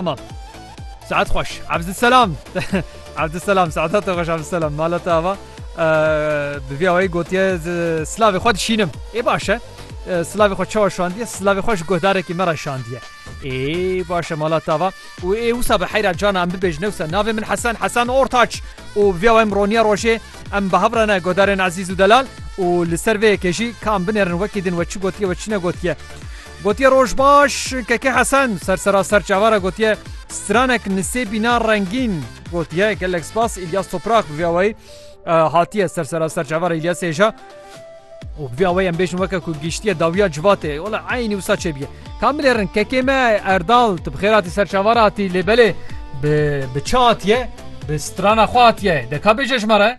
Tamam. Saat xweş. Abdüsselam. Abdüsselam. Saat te xweş Abdüsselam. Mala te ava. Bi vî awayî gotiye silavê xwe dişînim. Ê baş e. Silavê xwe çawa şandiye? Silavê xwe ji guhdarekî me re şandiye. Ê baş e mala te ava. Û ê wisa bi heyra cana em bibêjin wisa navê min Hesen Hesen Ortaç û vî awayî em roniya rojê em bi hev re ne godarên ezîz û delal û li ser vê yekê jî ka em binerin wekî din we çi gotiye we çi ne gotiye. Gotiye roj baş Keke Hesen ser sera ser çava re gotiye stranek nisêbîna rengîn gotiye gelek spas İlyas Toprak bi vê awayî hatiye ser sera ser çava re İlyas Êja û bi vê awayî em bêjin weke ku giştiye dawiya civatê ola eynî wisa çêbiye kamilê rin kekê me Erdal tu bi xêr hatî ser çava re hatî lê belê bi bi çi hatiye bi strana xwe hatiye deka bêje ji me re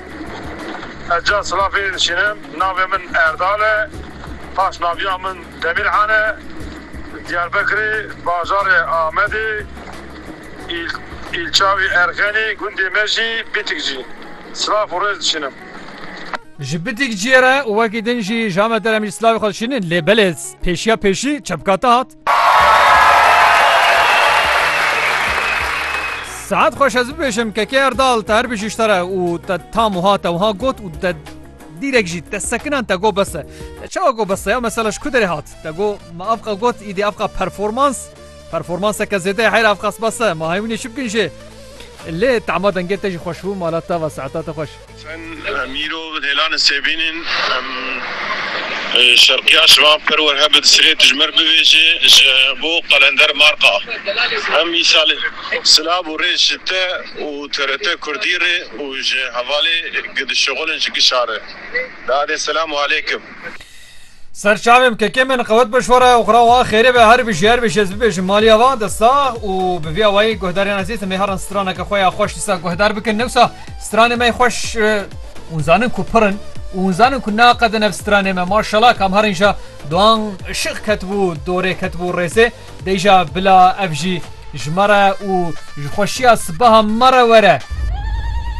Ez ca silav fêrî diçînim. Navê min Erdal e. Paş naviya min Demîrhan e. Li Diyarbekirê, bajarê Amedê, îlça wî Erxenî, gundê me jî Bîtikcî. Silav û rêz diçînim. Ji Bîtikciyê re û wekî din jî ji Amedê re min jî silavê xwe diçînin lê belê pêşiya pêşî çepkata hat. Saet xweş ez bibêjim kekê erdal te her bijî te re û te tam wiha te wiha got û te dîrek jî te sekinan te got bes e te çawa got bes e ya mesela ji ku derê hat te got me ev qe got îdî ev qe performans performanseke zêde ye heyra ev qas bes e ma hemînê çi bikin jê lê tema dengê te jî xweş bû mala te ve saeta te xweş Em îro bi hêlan e sê bînin. Em şerqiya şivan per wer heb di sirê tijmer bivêjê ji bo qelender Marqa. Em îsal silav û rêz ji te û TRT Kurdî rê û ji hevalê gi dişixulin ji gişa re. Dadê selam û aleykim. Ser çavêm kekê min qewet bi şore û xwe ra wa xêrê be her bî jî her bî jî ez bibêjim malîya van de sax û bi vî awayî guhdarên ezîz em ê herin straneke xwe ya xweş dîsa guhdar bikin newsa stranê me xweş ûn zanin ku pir in û hûn zanin ku naqedin ev stranê me maşala kam herin ja doan şix ketibû dorê ketibû rêzê deyja bila ev jî ji me re û ji xweşîya sibeha me re were.